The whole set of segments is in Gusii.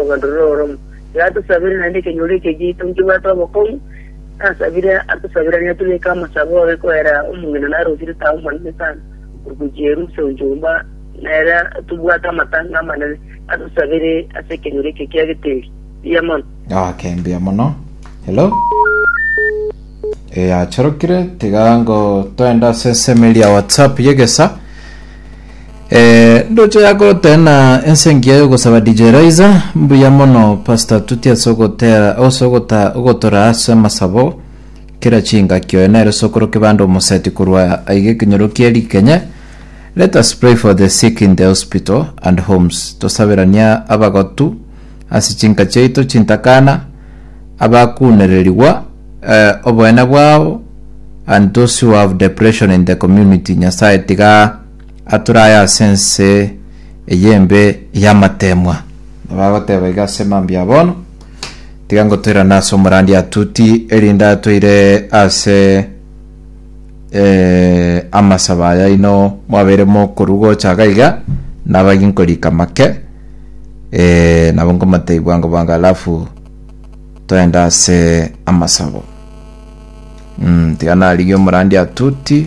Obororo oromo iga atosabere, naende ekenyoro ekio giaito nkebwate obokong'u. Nasabire atosabiranie tobeke amasabo oye koera omong'ina narosire tao monene sana ogochia erusia gochia gomba nere tobwate amatanga amanene. Atosabere ase ekenyoro ekio kia geteri. Mbuya mono. Ok, mbuya mono. Hello. Eyachorokire tiga ngo toende ase ensemo eria WhatsApp y'egesa. Ee, ndoche agoteena ense engiya y'ogosaba DJ Raiza. Mbuya mono Pastor Tuti ase ogotera ase ogota ogotora ase amasabo kera chingaki. Oyo nere sokoro kebanda omoseti korwa aiga ekenyoro kie rikenye. Let us pray for the sick in the hospital and homes. Tosaberania abagotu ase chinka chiaito chintakana, abakunererigwa eh, oboene bwao and those who have depression in the community. Nyasaye tiga Ature aye ase ense eye embe y'amateemwa. Nabo agoteba iga ase mambia bono, Tiga ngotoirane ase omorandi atuti, erinde atoire ase eh, amasabo aya ino mwabeire mokorwa gocha iga iga, nabo agi nkorika make, eh, nabo nkomatei bwango bwango alafu toende ase amasabo. Mm, tiga narigie omorandi atuti,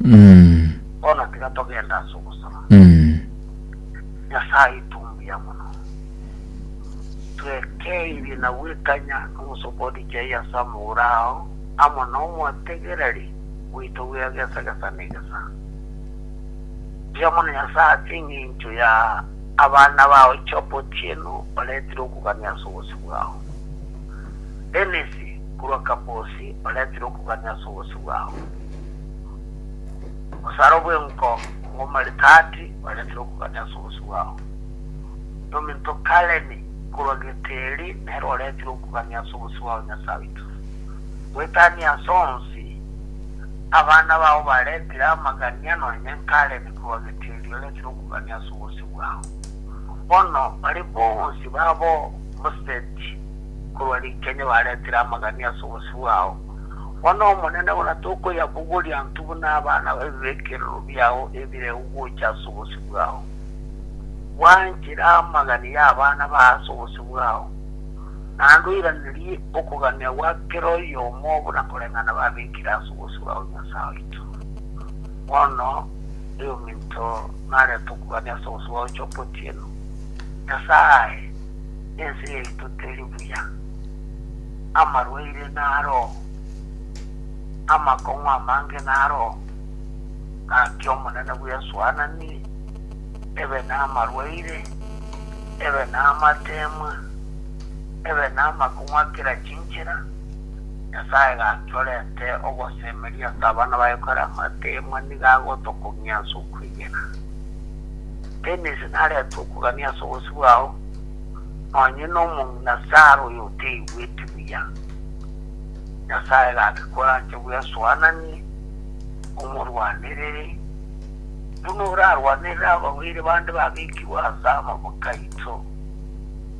Mm. Bono tiga togende ase ogosaba. Mm. Nyasae, tomuya mono. Twekeirie na gwekanya nomosokoni chai ase amagoro ao, amo nomotegereri oito bw'ira gesa gesa na egesa. Mbuya mono Nyasae ase engencho ya abana bao Job otieno oretire okogania ase obosio bwao. Dennis korwa Kabosi oretire okogania ase obosio bwao. Obosaro bw'enko bw'omoritati barentire okogania ase obosio bwabo, na ominto Kaleni korwa Geteri nere orentire okogania ase obosio bwao Nyasae oito. Goetania ase onsi, abana bao barentire amagania nonye Kaleni korwa Geteri orentire okogania ase obosio bwao. Bono bari bonsi babo Museti korwa Rikenya barentire amagania ase obosio bwao. Bono Omonene buna tokoyabogoria intwe buna abana b'ebibekerero biao ebireu gocha ase obosio bwao. Bwanchera amagani y'abana b'ao ase obosio bwao, naende oiranerie okogania gwa kera oyomo buna koreng'ana babekire ase obosio bwao Nyasae oito. Bono eominto narete okogania ase obosio bwao choka otieno, Nyasae, ense yaito teri buya. amarwaire naroo, amakong'u amange naroo, gaki Omonene bw'esuanani ebe namarwaire, ebe namateemwa, ebe namakong'u a kera chinchera, Nyasae gaki orente ogosemeria ase abana baye kore amateemwa nigo agotokong'ia ase okwegena. Dennis narete okogania ase obosio bwao. Onye nomong'ina Sara oyoteigweti buya, Nyasaye gake koranche bwesoananie, omorwanerere, buna orarwanerere ababaire bande babekigwe ase amabuta aito.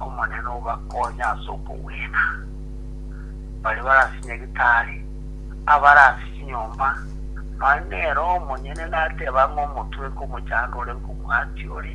Omonene obakonye ase okogwena, baria bare ase nyagetari, abare ase chinyomba, nonya nere omonyene nateba ng'a omotweke omochandore nkomwati ore.